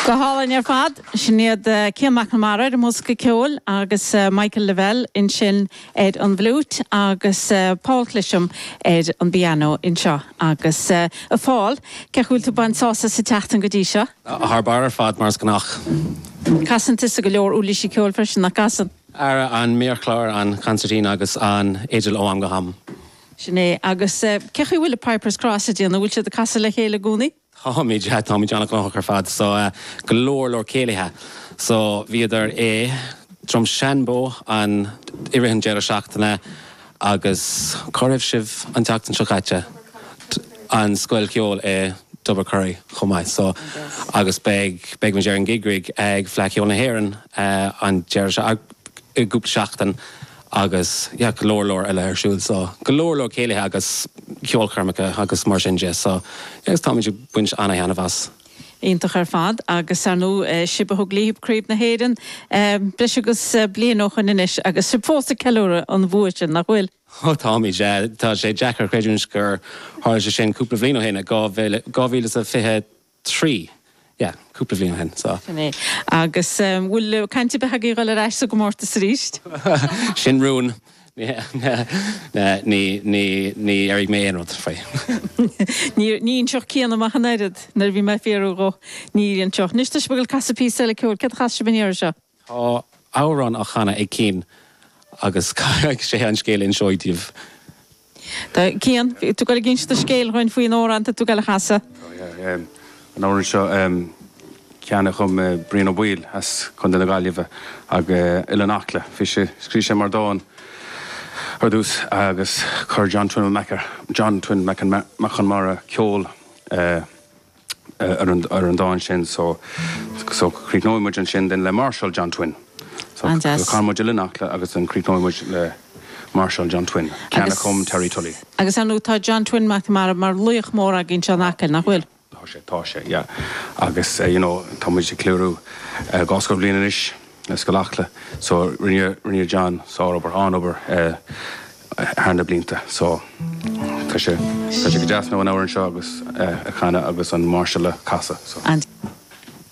Go hálainn ar fad. Sin iad Cian McNamara ar an mbosca ceoil agus Michael Lavelle ansin ar an bhfliúit agus Paul Clesham ar an bpiano anseo. Agus a Phaul, cé chaoi bhfuil tú ag baint sásamh as an tseachtain go dtí seo? Thar barr ar fad, mar is gnách. Casann tusa go leor uirlísí ceoil freisin, nach gcasann? Ara, an méarchlár, an consairtín agus an fhidil ó am go ham. Sin é. Agus cé chaoi bhfuil Pipers Cross ag déanamh? Bhfuil siad ag casadh le chéile i gcónaí? Táimid, táimid an-ghnóthach ar fad. So, go leor leor céilithe. So, bhíodar i Droim Seanbhó an, i rith an deireadh seachtaine agus cá raibh sibh an tseachtain seo caite? An scoil cheoil i dTubbercurry chomh maith. So, agus beidh, beidh muid ar an gig rig ag Fleadh Cheoil na hÉireann an deireadh, i gcúpla seachtain Agus yeah go leor leor eile ar siúil so go leor leor céilithe agus ceolchoirmeacha agus mar sin de so yeah agus táimid ag baint ana-thaithneamh as. Iontach ar fad agus ar ndú sibh a thug libh Craobh na hÉireann breis agus bliain ó shoin anois agus sibh fós ag ceiliúradh an bhua sin, nach bhfuil? Oh táimid yeah. Tá sé deacair a chreidiúint gur tharla sé sin cúpla bhliain ó shin i 2020. trí, yeah, cúpla bhliain ó shin, so. Sin é. Agus ehm, bhfuil caint ar bith agaibh dul ar ais sa gcomórtas arís? Sin rún. Ní, ní, níor airigh mé aon rud faoi. Níor, ní inseodh Cian dom ach an oiread, nuair a bhí mé ag fiafraí dhó, ní inseodh. Anois, tá sibh ag gabháil ag casadh píosa eile ceoil, céard a chasfas sibh an iarraidh seo? Tá amhrán á chanadh ag Cian agus caithfidh sé an scéal a inseacht daoibh. Cian, bhí tú ag inseacht scéal dhúinn faoin amhrán atá tú ag casadh. Tá, yeah. An amhrán seo ceann a chum Brian Ó Baoill as Contae na Gaillimhe agus Oileán Acla. Bhí sé, scríobh sé mar dán ar dtús agus chuir John Twin Mac an John Twin Mac Conmara ceol ar an dán sin so críochnóidh muid ansin then le Máirseáil John Twin. So canfaidh muid Oileán Acla agus then críochnóidh muid le Máirseáil John Twin, ceann a chum Terry Tully. Agus ar ndóigh tá John Twin Mac Conmara mar laoch mór againn anseo in Acaill, nach bhfuil? Tá sé, tá sé, yeah. Agus you know tá muid ag ceiliúradh dhá scór bliain anois. Scoil Acla. So rinne, rinne John sárobair, an-obair eh thar na blianta. So tá sé, tá sé go deas now an amhrán seo agus eh a chanadh agus an máirseáil a chasadh. So.